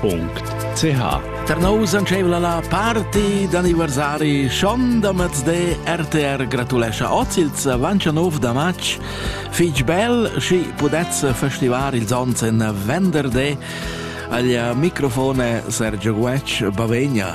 .ch Per nous ancevla la party d'anniversari schon da mezde RTR gratulescha oz ils avancha nov da match fich bel schi pudez festivar ils ons en venderde aglia microfone Sergio Guetsch Bavegna.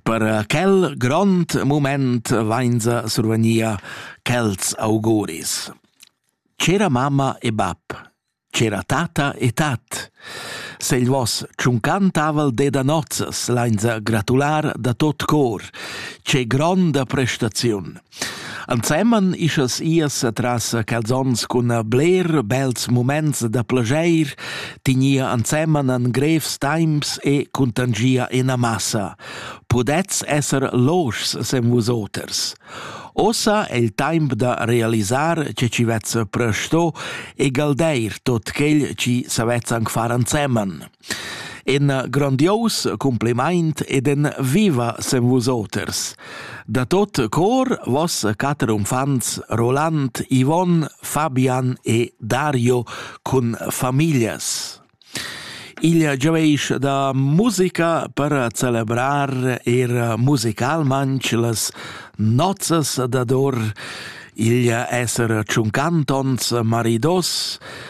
Per quel grond moment vainsa survagnia quels auguris. C'era mamma e bab, c'era tata e tat. Se il vos tschuncantaval de da nozzas lainsa gratular da tot cor, ce gronda prestaziun. Ensemen ischas ias atras quels ons cun bler bels muments da plageir, tignia ensemen en grevs temps e cuntangia ina massa. Pudets esser loschs sem vusoters. Ossa è il temp da realisar che ci vezza presto e galdeir tot quel ci savezza anc far ensemen. En grandios cumplimaint ed en viva sem vusoters. Da tot cor vos quatter uffants Roland, Yvonne, Fabian e Dario cun familias. Il gioveis da musica per celebrar er musicalmanch las nozzas dador, il esser tschuncantons maridos,